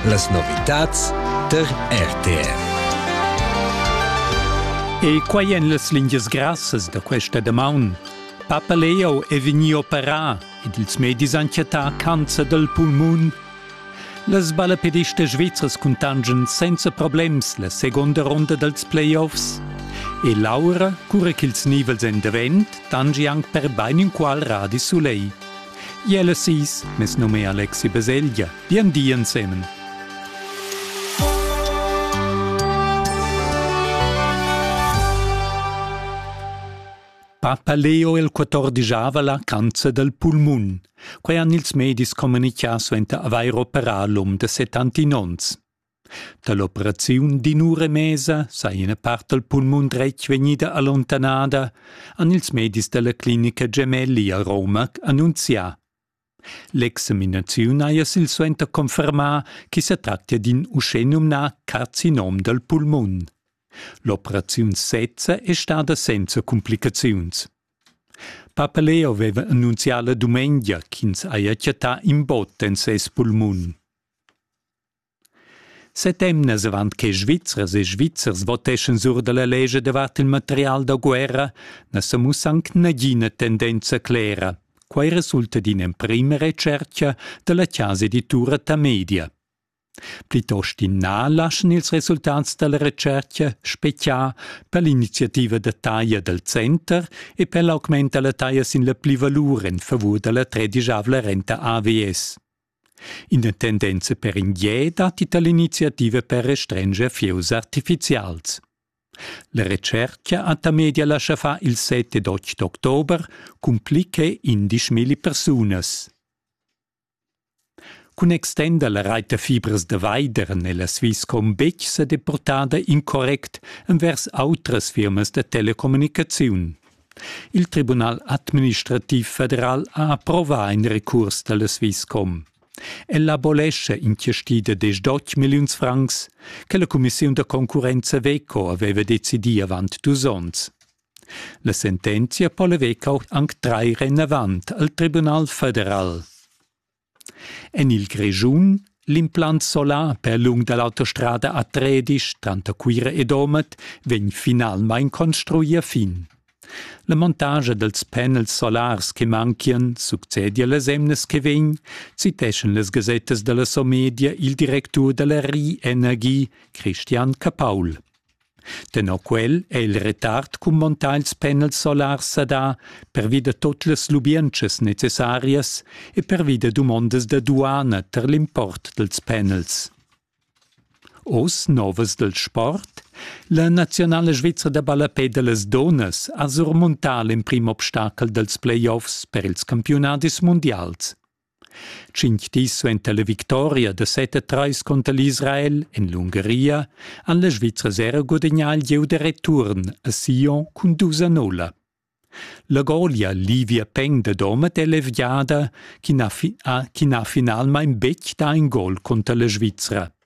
Las novitads tar RTR. E quai en las lingias grassas da questa damaun. Papa Leo è vegnì operà ed ils medis han chattà cancer dal pulmun. Las balapedistas svizras cuntangian senza problems la seconda ronda dals playoffs. E Laura, cura ch'ils nivels èn davent, tangi anc per bain inqual radis sulegl. Jelle sis, mes num è Alexi Beseglia. Bien di ensemen. Papa Leo il 14 la cancer del pulmun. Quei han ils medis communicà suenter avair operà l'um de 70 onns. Dall'operaziun d'in'ura e mesa sa ina part dal pulmun dretg vegnida allontanada, han ils medis dalla clinica Gemelli a Roma annunzià. L'examinaziun haja silsuenter confermà che sa tractia d'in uschenumnà carcinom dal pulmun. L'operaziun sezza è stada senza cumplicaziuns. Papa Leo aveva annunzià la dumengia ch'ins haja chattà in bot en ses pulmun. Settemnas avant che Svizzers e Svizzers voteschan sur da la lescha davart il material da guerra na sa mussa anc nagina tendenza clera. Quai resulta d'in'emprima retschertga da la chasa editura Tamedia. Plitost in na laschan ils resultats da la retschertga speziar per l'iniziativa da taglia dal center e per l'augment da la taglia sin la plivalur en favur da la tredisavla renta AVS. Ina tendenza per in gie datti da l'iniziativa per restrenger fieus artifizials. La retschertga a Tamedia lascha far il 7 ed 8 october cun pli che 11.000 persunas. Cun extender la reita fibras da vaider nella Swisscom betg sa deportada incorrect envers autras firmas da telecommunicaziun. Il Tribunal administrativ federal ha approvà in recurs dalla Swisscom. Ella abolescha in tiesti da diesch milliuns francs che la cumissiun da concurrenza Veco aveva decidì avant dus onns. La sentenzia po la Veco anc trair enavant al Tribunal federal. En il Grischun l'implant solar per lung da l'autostrada a Tredisch tranter Cuira e Domat vegn finalmain construì a fin. La montagia dals panels solars che manchian succedia las emnas che vegn, citeschan las gasettas da la Somedia il directur da la Rienergie, Christian Capaul. Tenor quel è il retard cun montagns penals solars sadà pervi da tut las lubientschas necessarias e pervi da dumondas da duana tar l'import dals penals. Oz novas dal sport La naziunala svizra da ballapè da las dunnas ha surmuntà l'emprim obstachel dals playoffs per ils campiunadis mundials. Tschintg dis suenter la victoria da set a trais cunter l'Israel en l'Ungaria han las Svizras era gudagnà il gieu da return a Sion cun dus a nulla. La golia Livia Peng da Domat è levgiada, chi n'ha, fi- ha, chi n'ha finalmain betg dà in gol cunter la Svizra.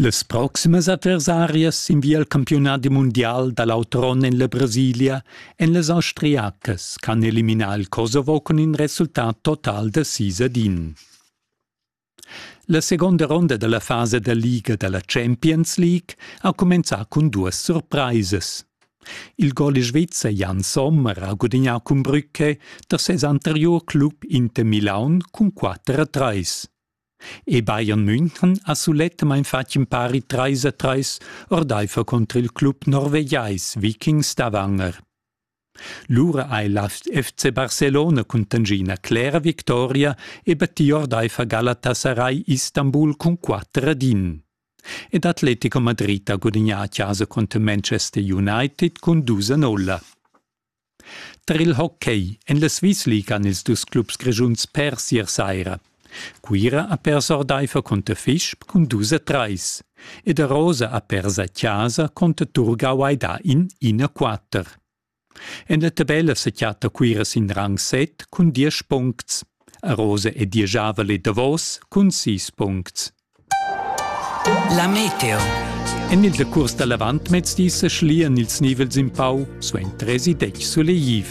Las proximas adversarias sin via al campiunadi mundial da l'autron en la Brasilia èn las Austriacas ch'han eliminà il Kosovo cun in resultat total da sis ad in. La seconda ronda da la fasa da liga da la Champions League ha cumenzà cun duas surpraisas. Il gol svizzer Jan Sommer ha gudignà cun Brücke da ses anteriur club Inter Milaun cun 4 a 3. e Bayern München ha sulettamain fatg impari trais a trais ordaifer cunter il club norvegiais Vikings da Wanger. Lura ha il FC Barcelona cun tangina clera victoria e battì ordaifer Galatasaray Istanbul cun 4 ad 1. Ed Atletico Madrid ha gudagnà a chasa cunter Manchester United cun 2 a 0. Tar il hockey en la Swissliga han ils dus clubs grischuns pers ier saira. Cuira ha pers ordaifer cunter Fisch cun dus a trais ed a Rosa ha pers a chasa cunter Turgau hai dà in 1-4. En la tabella sa chatta Cuira sin rang 7 cun diesch puncts. A Rosa e diesch Avel e Davos cun sis puncts. La meteo. En il decurs da l'avantmezdi sa schlian ils nivels in pau suenter tresi detg sulegliv.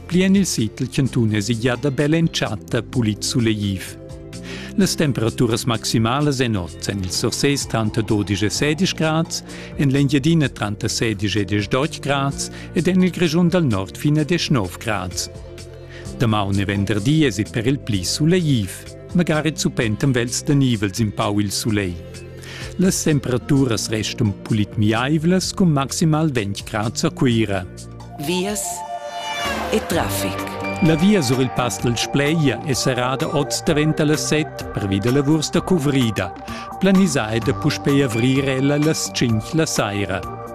Pli en il sitel chantun è sigliada bella entschatta pulit sulegliv. Las temperaturas maximalas en oz en il Sursés tranter 12 e 16 grads, en l'Engiadina tranter 16 e 18 grads ed en il Grischun dal nord fino a 19 grads. Damaun e venderdi es il per il pli sulegliv. magari zupentem vels da nivels in pau il sulegl. Las temperaturas restan pulit miaivlas cun maximal 20 grad a Cuira. Vias e traffic. La via sur il Pass del Spleia è serrada oz davent las 7 pervi da lavurs da cuvrida. Planisà è da puspei avrir ella las 5 la saira.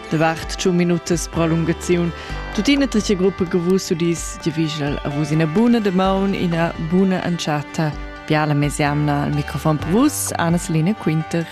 Davart tschun minutas prolungaziun. Tuttina trice gruppa che vus udis di viginal a vus ina buna de maun, ina buna entschatta. Biala mesiamna al microfon per vus, Anna Selina Quinter.